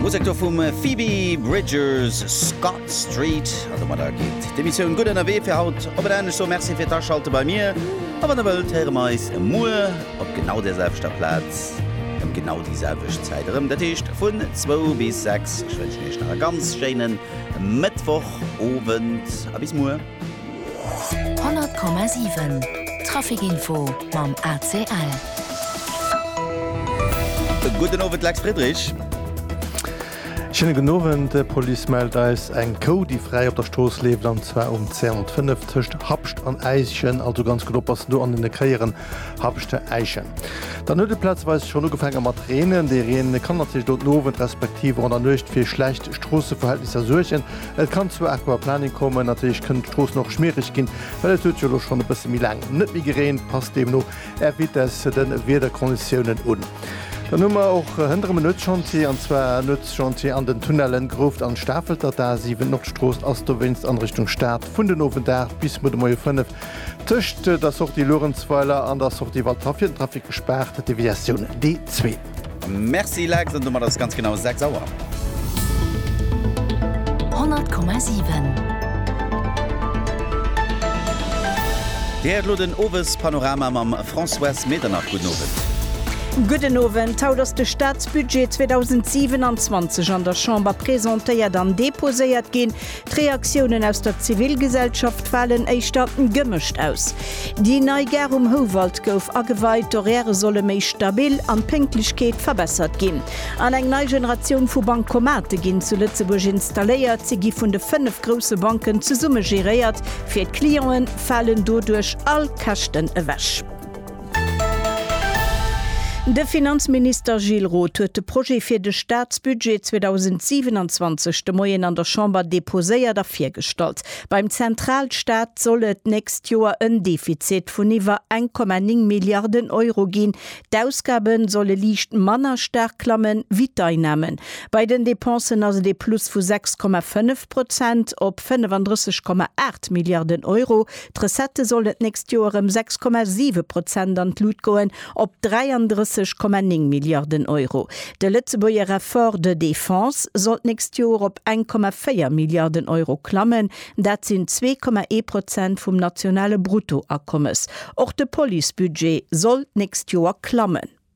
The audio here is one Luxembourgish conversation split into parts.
Musek do vum Phoebe Bridgers, Scott Street. A domadder geet d'Emissioun gutt ënnerwee fir haut op en Enn. Ech soe Merci fir d'Aschalte bei mir. A wann Der wëllt, héiere mer eis muer op genau där selwechter Plaz ëm genau déi selwecht Zäit erëm, dat heescht vun zwou bis sechs. Ech wënschen Iech nach e ganz schéine Mëttwochowend a bis muer. 100,7 Trafic Info mam ACL. E gudden Owend, Lex Friedrich. Schéine gudden Owend. D'Police mellt eis eng Kou, déi fräi op der Strooss leeft, an zwar um 205 tëscht Habscht an Äischen. Also ganz gutt oppassen do an deene Kéieren Habscht-Äischen. Dann huet et plazeweis schonn ugefaange mat reenen. Dee Reen kann natierlech do den Owend respektiv och an der Nuecht fir schlecht Stroosseverhältnisser suergen. Et kann zu Aquaplaning kommen. Natierlech kënnen d'Stroossen och schmiereg ginn, well et huet jo elo schonn e bësse méi laang net méi gereent. Passt deemno Är Vitesse de Wiederkonditiounen un. Dann hu mer och hënterem e Nuetschantier, an zwar e Nuetschantier an den Tunnellen Grouft an Stafelt. Dat A 7 Nordstrooss ass dowéinst an Richtung Stad vun den Owend 8 bis muer de Moie 5 tëscht der Sortie Luerenzweiler an der Sortie Waldhaff fir den Trafic gespaart, Deviatioun D2. Merci Lex, an domat ass et ganz genau 6 Auer. 100,7. Dir héiert elo den Owespanorama mam Françoise Medernach. Gudden Owend. Gudden Owend. Haut ass de Staatsbudget 2027 an der Chamber presentéiert an deposéiert ginn. D'Reaktiounen aus der Zivilgesellschaft falen éischter gemëscht aus. Déi nei Gare um Houwald gouf ageweit, d'Horairë solle méi stabil an d'Pénktlechkeet verbessert ginn. An eng nei Generatioun vu Bankomate ginn zu Lëtzebuerg installéiert. Se gi vun de fënnef grousse Banken zesumme geréiert. Fir d'Clienten falen doduerch all Käschten ewech. De Finanzminister Gilles Roth huet de Projet fir de Staatsbudget 2027 de Moien an der Chamber deposéiert a virgestallt. Beim Zentralstaat soll et d'nächst Joer en Defizit vun iwwer 1,9 Milliarden Euro ginn. D'Ausgabe solle liicht manner staark klammen, wéi d'Einnamen. Bei den Depensen ass et ee Plus vu 6,5 Prozent op 35,8 Milliarden Euro. D'Recettë sollen d'nächst Joer ëm 6,7 Prozent an d'Lut goen, op 33,9 Milliarden Euro. De Lëtzebuerger Effort de défense soll d'nächst Joer op 1,4 Milliarden Euro klammen, dat sinn 2,1 Prozent vum nationale Bruttoakommes. Och de Policebudget soll d'nächst Joer klammen.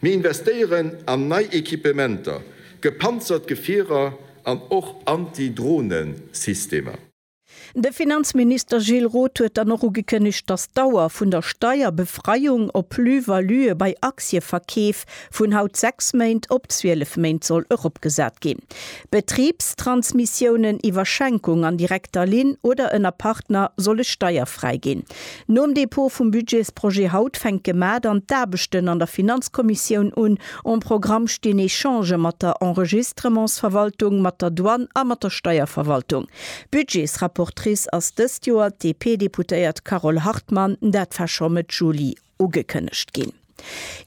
Mir investéieren an nei Equipementer, gepanzert Gefierer an och Anti-Drohnen-Systemer. De Finanzminister Gilles Roth huet dann och ugekënnegt, dass d'Dauer vun der Steierbefreiung op Plus-valuë bei Aktieverkeef vun haut 6 Méint op 12 Méint soll eropgesat ginn. Betribstransmissiounen iwwer Schenkung an direkter Linn oder ënner Partner solle steierfräi ginn. Nom Dépôt vum Budgetsprojet haut fänkt gemat an d'Aarbechten an der Finanzkommissioun un. Om Programm stinn Echangë mat der Enregistrementsverwaltung, mat der Douane a mat der Steierverwaltung. Budgetsrapportrice ass dëst Joer d'DP-Deputéiert Carole Hartmann, dat war scho Mëtt Juli. ugekënnegt ginn.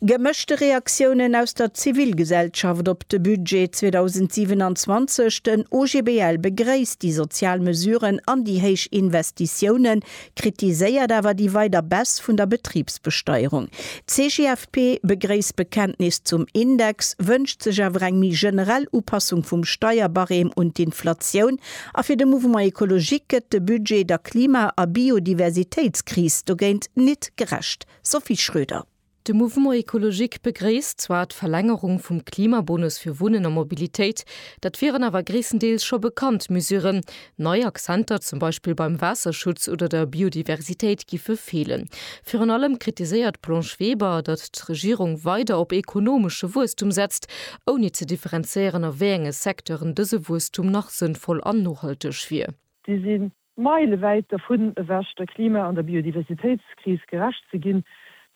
Gemëschte Reaktiounen aus der Zivilgesellschaft op de Budget 2027, Den OGBL begréisst déi sozial Mesuren an déi héich Investitiounen, kritiséiert awer déi weider Baisse vun der Betribsbesteierung. D'CGFP begréisst d'Bekenntnis zum Index, wënscht sech awer eng méi generell Upassung vum Steierbarème un d'Inflatioun A fir de Mouvement Ecologique gëtt de Budget der Klima a Biodiversitéitskris dogéint nit gerecht. Sophie Schröder. De Mouvement Ecologique begréisst zwar d'Verlängerung vum Klimabonus fir Wunnen a Mobilitéit, dat wieren awer gréisstendeels scho bekannt Mesuren. Nei Akzenter, zum Beispill beim Waasserschutz oder der Biodiversitéit, giffe feelen. Virun allem kritiséiert d'Blanche Weber, datt d'Regierung weider op ekonomesche Wuesstum setzt, ouni ze differenzéieren a wéi enge Secteuren dëse Wuesstum nach sënnvoll an nohalteg wier. Si si meilewäit dervun ewech, der Klima an der Biodiversitéitskris gerecht ze ginn.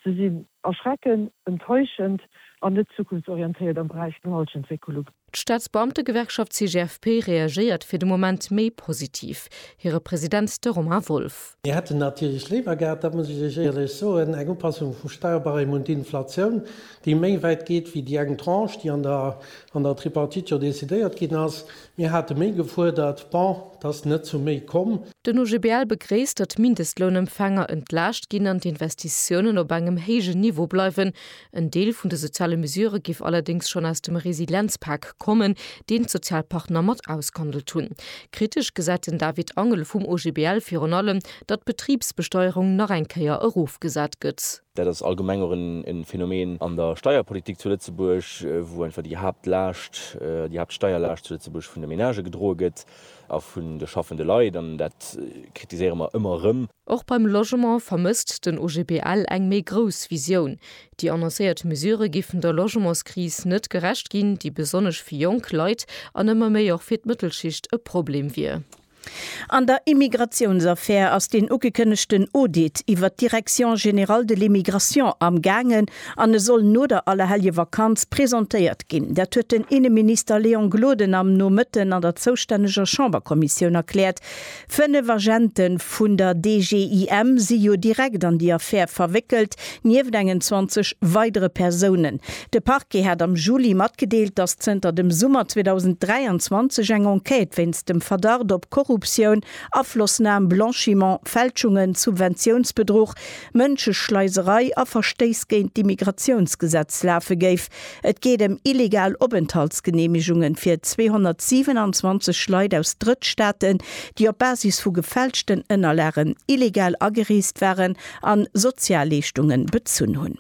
Se sinn erschrecken, enttäuschend an net zukunftsorientéiert am Beräich vun der Halschentwécklung. D'Staatsbeamtegewerkschaft CGFP reagéiert fir de Moment méi positiv. Hire President, de Romain Wolff. Mir hätten natierlech léiwer gehat, dat muss ech Iech éierlech soen, eng Upassung vum Steuerbarème un d'Inflatioun, déi méi wäit geet wéi déi eng Tranche, déi an der Tripartite jo decidéiert ginn ass. Mir hate méi gefuerdert. Bon, et ass net zu méi komm. Den OGBL begréisst, datt d'Mindestlounempfänger entlaascht ginn an d'Investitiounen op engem héijen Niveau bleiwen, En Deel vun de soziale Mesure géif allerdéngs schonn aus dem Resilienzpak kommen, deen d'Sozialpartner mat ausgehandelt hunn. Kritesch gesäit den David Angel vum OGBL virun allem, datt d'Betribsbesteuerung nach eng Kéier erofgesat gëtt. Dat ass allgemeng och e Phänomen an der Steierpolitik zu Lëtzebuerg, wou einfach déi Haaptlaascht, déi Haaptsteierlaascht zu Lëtzebuerg vun de Menagë gedroe gëtt. A vun de schaffende Leit, an dat kritiséiere mer ëmmer erëm. Och beim Logement vermësst den OGBL eng méi grouss Visioun. Déi annoncéiert Mesure géifen der Logementskris net gerecht ginn, déi besonnesch fir jonk Leit an ëmmer méi och fir d'Mëttelschicht e Problem wier. An der Immigratiounsaffär ass deen ugekënnegten Audit iwwert d'Direction générale de l'immigration amgaangen, An e soll no der Allerhelljevakanz presentéiert ginn. Dat huet den Inneminister Léon Gloden am Nomëtten an der zoustänneger Chamberkommissioun erkläert. Fënnef Agente vun der DGIM si jo direkt an déi Affär verwéckelt, nieft engen 20 weidere Persounen. De Parquet hat am Juli matgedeelt, datt zënter dem Summer 2023 eng Enquête wéinst dem Verdacht op Korruptioun, Aflossnam, Blanchiment, Fälschungen, Subventiounsbedruch, Mënscheschleiserei a Verstéiss géint d'Immigratiounsgesetz lafe géif. Et geet ëm illegal Openthaltsgeneemegungen fir 227 Leit aus Drëttstaaten, déi op Basis vu gefälschten Ënnerlagen illegal agereest waren an Sozialleeschtungen bezunn hunn.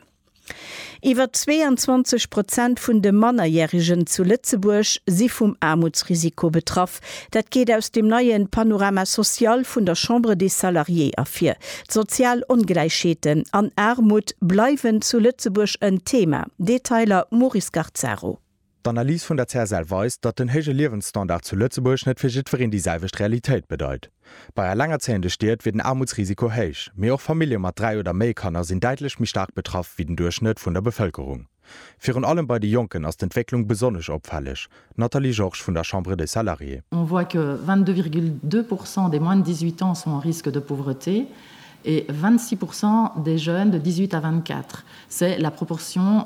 Iwwer 22 Prozent vun de Mannerjärigen zu Lëtzebuerg si vum Aarmutsrisiko betraff. Dat geet aus dem neie Panorama social vun der Chambre des Salariés ervir. D'sozial Ongläichheeten an Aarmut bleiwen zu Lëtzebuerg en Thema. Detailer Maurice Garcaro. D'Analys vun der CSL weist, datt den héije Liewensstandard zu Lëtzebuerg net fir jiddwereen déi selwecht Realitéit bedeit. Bei elengerzéiende Stied wier den Aarmutsrisiko héich, mee och Famillje mat dräi oder méi Kanner sinn däitlech méi staark betraff wéi den Duerchschnëtt vun der Bevëlkerung. Virun allem bei de Jonken ass d'Entwécklung besonnesch opfälleg. Nathalie Georges vun der Chambre des Salariés. On voit que 22,2 pourcent des moins de 18 ans sont en risque de pauvreté et 26 pourcent des jeunes de 18 à 24. C'est la proportion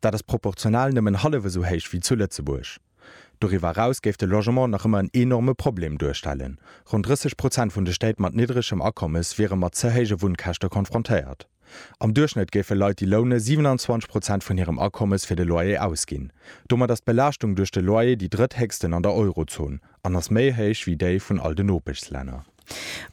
Dat ass proportional nëmmen hallef esou héich wéi zu Lëtzebuerg. Doriwwer eraus géif de Logement nach ëmmer en enorme Problem duerstellen. Ronn 30 Prozent vun de Stéit mat niddregem Akommes wiere mat ze héije Wunnkäschte konfrontéiert. Am Duerchschnëtt géife Leit, déi loune, 27 Prozent vun hirem Akommes fir de Loyer ausginn. Domat ass d'Belaaschtung duerch de Loyer déi drëtthéchsten an der Eurozon an ass méi héich wéi déi vun all de Nopeschslänner.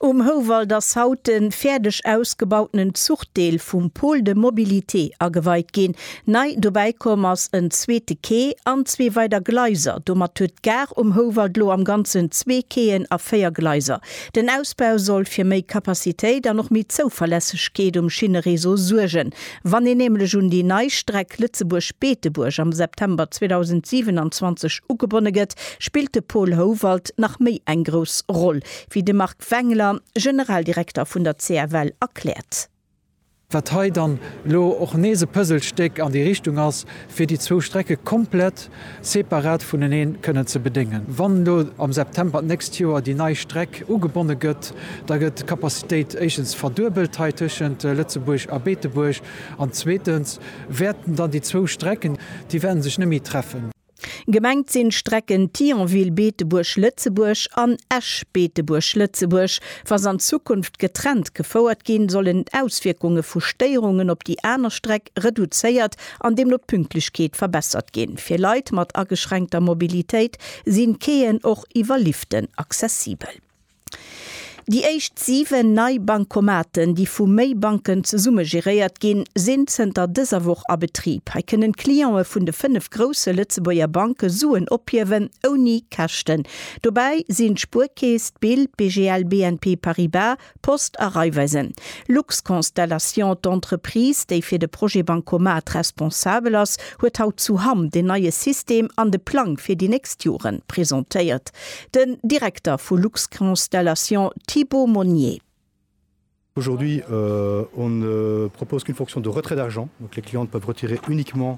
Um Houwald ass haut de fäerdeg ausgebautenen Zuchdeel vum Pôle de mobilité ageweit ginn. Nei dobäi komm ass en zweete Quai an zwee weider Gleiser. Domat huet d'Gare um Houwald lo am ganzen zwee Quaien a véier Gleiser. Den Ausbau soll fir méi Capacitéit an och méi Zouverlässegkeet um Schinnereseau suergen. Wann een nämlech un déi nei Streck Lëtzebuerg-Beetebuerg am September 2027 ugebonne gëtt, spillt de Paul Howald nach méi eng grouss Roll, wéi de Marc Wengler, Generaldirekter vun der CFL, erkläert. Wat hei dann elo och nees e Puzzlestéck an déi Richtung ass, fir déi zwou Strecke komplett separat vuneneen kënnen ze bedéngen. Wann elo am September d'nächst Joer déi nei Streck ugebonne gëtt, da gëtt d'Capacitéit éischtens verduebelt hei tëschent Lëtzebuerg a Beetebuerg an zweetens wäerten dann déi zwou Strecken, déi wäerte sech net méi treffen. Gemengt sinn d'Strecken Thionville, Beetebuerg, Lëtzebuerg an Esch, Beetebuerg, Lëtzebuerg. Wa se an Zukunft getrennt gefouert ginn, sollen d'Auswierkunge vu Stéierungen op déi aner Streck reduzéiert an deemno d'Pünktlechkeet verbessert ginn. Fir Leit mat ageschränkter Mobilitéit sinn d'Quaien och iwwer Liften accessibel. Déi éischt 7 nei Bancomaten, déi vu méi Banken zesumme geréiert ginn, sinn zënter dëser Woch a Betrib. Hei kënnen d'Clientë vun de 5 grousse Lëtzebuerger Banke Suen ophiewen, ouni Käschten. Dobäi sinn d'Spuerkeess, d'Bild, BGL, BNP Paribas, Post a Raiffeisen Lux Constellation, d'Entreprise, déi fir de Projet Bancomat responsabel ass, huet haut zu Hamm den neie System an de Plang fir déi nächst Jore presentéiert. Den Direkter vu Lux Constellation Thibault Monnier. Aujourd'hui, on ne propose qu'une fonction de retrait d'argent, donc les clients peuvent retirer uniquement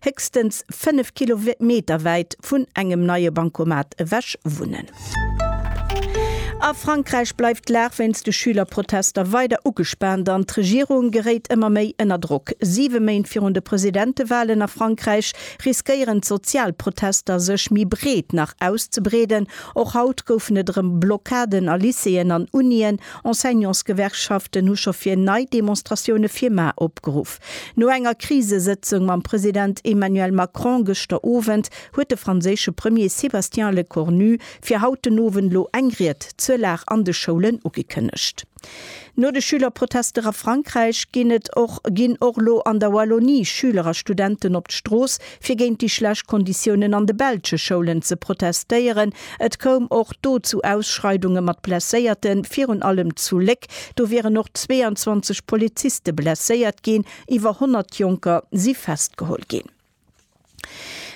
héchstens 5 Kilometer wäit vun engem neie Bancomat ewech wunnen. A Frankräich bleift d'Lag wéinst de Schülerprotester weider ugespaant an d'Regierung geréit ëmmer méi ënner Drock. Siwe Méint virun de Presidentewalen a Frankräich riskéieren d'sozial Protester sech méi breet nach auszebreeden. Och haut goufen et erëm Blockaden a Lycéeën an Unien. Enseignantsgewerkschaften hu scho fir nei Demonstratioune fir mar opgeruff. No enger Krisesëtzung mam President Emmanuel Macron gëschter Owend huet de franséische Premier Sébastien Lecornu fir haut den Owend lo eng Ried zur Lag an de Schoulen ugekënnegt. No de Schülerprotester a Frankräich ginn et och ginn och lo an der Wallonie Schüler a Studenten op d'Strooss fir géint déi schlecht Konditiounen an de belsche Schoulen ze protestéieren. Et koum och do zu Ausschreidunge mat Blesséierten, virun allem zu Léck. Do wieren och 22 Poliziste blesséiert ginn. Iwwer 100 Jonker si festgeholl ginn.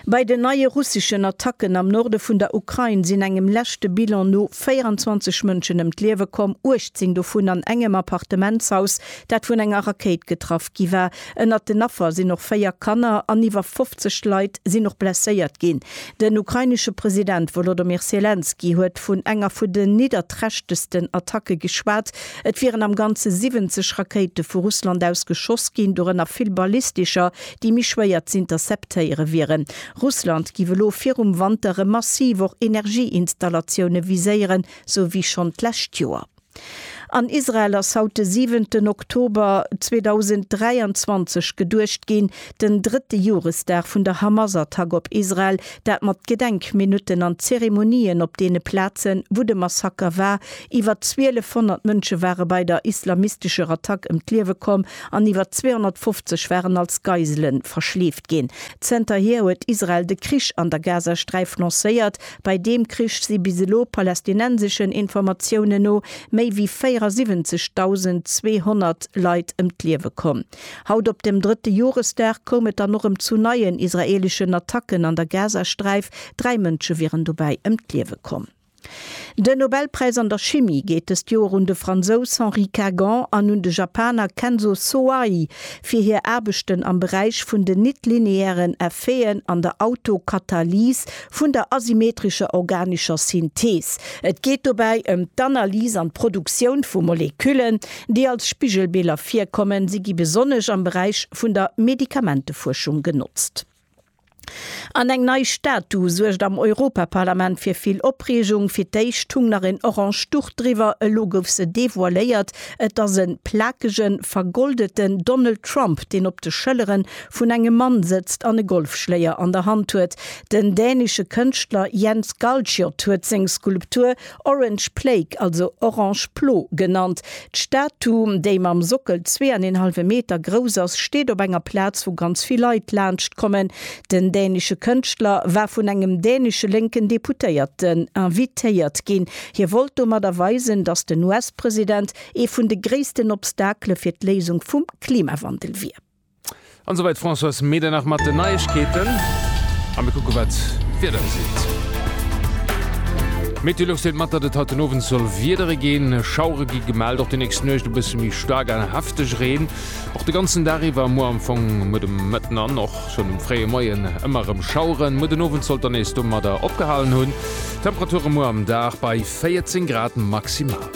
Bei den neie russeschen Attacken am Norde vun der Ukrain sinn engem leschte Bilan no 24 Mënschen ëm d'Liewe komm, 18 dovun an engem Appartementshaus, dat vun enger Rakéit getraff gi war. Ënnert den Affer sinn och véier Kanner an iwwer 50 Leit sinn och blesséiert ginn. Den ukrainesche President Wolodomir Selenskyj huet vun enger vun den nidderträchtegsten Attacke geschwat. Et wieren am Ganze 70 Rakéite vu Russland aus geschoss ginn, dorënner vill ballistescher, déi méi schwéier z'interceptéiere wieren. Russland géif elo virum Wanter erëm massiv och Energieinstallatioune viséieren, sou wéi schonn d'lescht Joer. An Israel ass haut de siwenten Oktober 2023 geduecht ginn, den drëtte Joresdag vun der Hamas-Attack op Israel, dat mat Gedenkminutten an Zeremonien op deene Plazen, wou de Massaker war. Iwwer 1.200 Mënsche ware bei der islamistescher Attack ëm d'Liewe komm an iwwer 250 waren als Geisele verschleeft ginn. Zenterhier huet Israel de Krich an der Gazasträif lancéiert, Bei deem Krich si bis elo, palästinenseschen Informatiounen no, méi wéi 74.200 Leit ëm d'Liewe komm. Haut op dem drëtte Joresdag koum et dann och ëm zu neien israeeleschen Attacken an der Gazasträif. Dräi Mënsche wieren dobäi ëm d'Liewe komm. Den Nobelpräis an der Chimie geet dëst Joer un de Fransous Henri Kagan an un de Japaner Kenzo Soai fir hir Aarbechten am Beräich vun den nit-lineären Effeten an der Autokatalys, Vun der asymmetrescher organescher Synthees. Et geet dobäi ëm d'Analys an d'Produktioun vu Moleküllen, déi als Spigelbiller virkommen. Si gi besonnesch am Beräich vun der Medikamentefuerschung genotzt. An eng nei Statu suergt am Europaparlament fir vill Opreegung. Fir d'éischt hung nach en orange Duch driwwer, elo gouf se devoiléiert. Et ass e plakegen, vergoldeten Donald Trump, deen op de Schëllere vun engem Mann sëtzt an e Golfschléier an der Hand huet. Den dänesche Kënschtler Jens Galschiot huet seng Skulptur Orange Plague, also Orange Plo, genannt. D'Statu, déi mam Sockel zwee an een hallwe Meter grouss ass, steet op enger Plaz, wou ganz vill Leit laanscht kommen. Den dänesche Kënschtler war vun engem dänesche lénken Deputéierten invitéiert ginn. Hie wollt domadder weisen, datt den US-President ee vun de gréissten Obstakele fir d'Léisung vum Klimawandel wier. An esouwäit d'Françoise Medernach mat den Neiegkeeten. A mir kucke wat d'Wieder geseet. Meteolux deelt mat, datt et haut den Owend soll wiedere ginn. Schauere gi gemellt, och déi nächst Nuecht e bësse méi staark a hefteg Reen och de ganzen Dag iwwer. Muer am Fong, muer de Mëtten an och schonn um fréie Moien ëmmer erëm Schaueren. Muer den Owend sollt dann nees domadder opgehalen hunn. Temperature muer am Dag bei 14 Grad maximal.